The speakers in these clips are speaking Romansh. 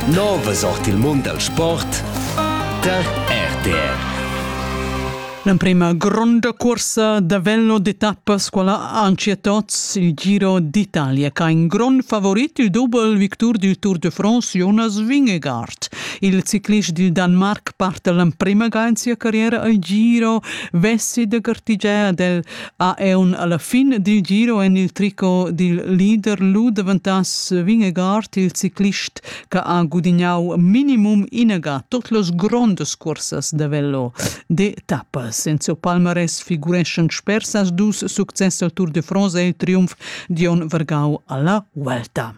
Novas ord il mund dal sport tar RTR. L'emprema gronda corsa da velno d'etappas quella anche tots il Giro d'Italia che ha in grond favorit il double victor du Tour de France Jonas Vingegaard. Il ciclist del Danemark parte l'emprema ga in sia carriera al Giro vessi de gartigea del ha eun alla fin dil giro en il tricot dil leader lu devantass Vingegaard il ciclist che ha gudignau minimum inaga tot los grondas cursas da velo de tappas. Enzo Palmares figureschan spersas dus success al Tour de France e il triumf Dion Vergau alla Vuelta.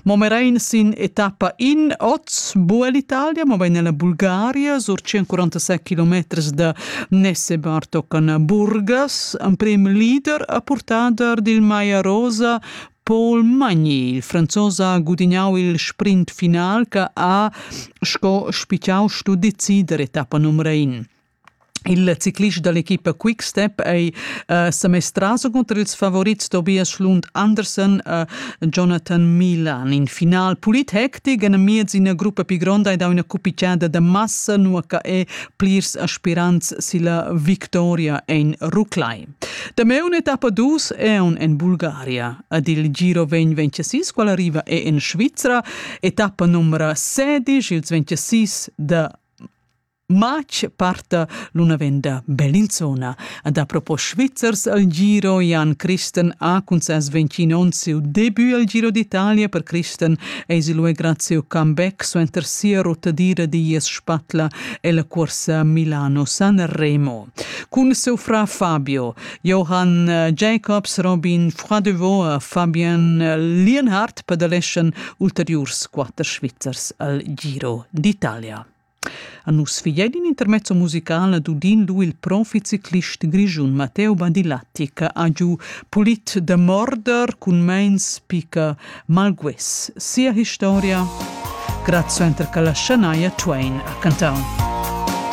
Mo merein sin etappa in oz buca l'Italia, mobein ella Bulgaria, sur 147 kilometers da Nessebár toccan Burgas. Emprem leader e purtader dil Maia Rosa Paul Magni. Il franzos ha gudignau il sprint final che ha sco spitgau stu decider etappa numero in. Il ciclist dall'equipa Quickstep ei uh, semestraus cunter ils favorits Tobias Schlund Andersen e Jonathan Milan. In final pulit hectic en miez ina gruppa pi gronda ei dau ina cupicciada de massa, nua che ei plirs aspirants silla victoria en ruclai. Dameu un'etappa dus è un en Bulgaria. Ad il Giro 2026, qual arriva è in Svizra, etappa numero 16, ils 26 de Matg parta l'una venda Bellinzona. A da propo Svizzers al giro Jan Christen ha cun ses 20 onn siu debut al Giro d'Italia per Christen eis il ue graziu comeback suenter sia rotadira dies spatla e la corsa Milano-San Remo. Cun seu fra Fabio, Johann Jacobs, Robin Fradevaux e Fabian Lienhardt pedaleschen ulteriurs quatter Svizzers al Giro d'Italia. A nus figein in intermezzo musical d'udin lu il proficiclist grischun Matteo Badilatti che ha giu pulit da morder cun meins picca malguess sia historia grazie enter che la schanaia Twain ha cantau.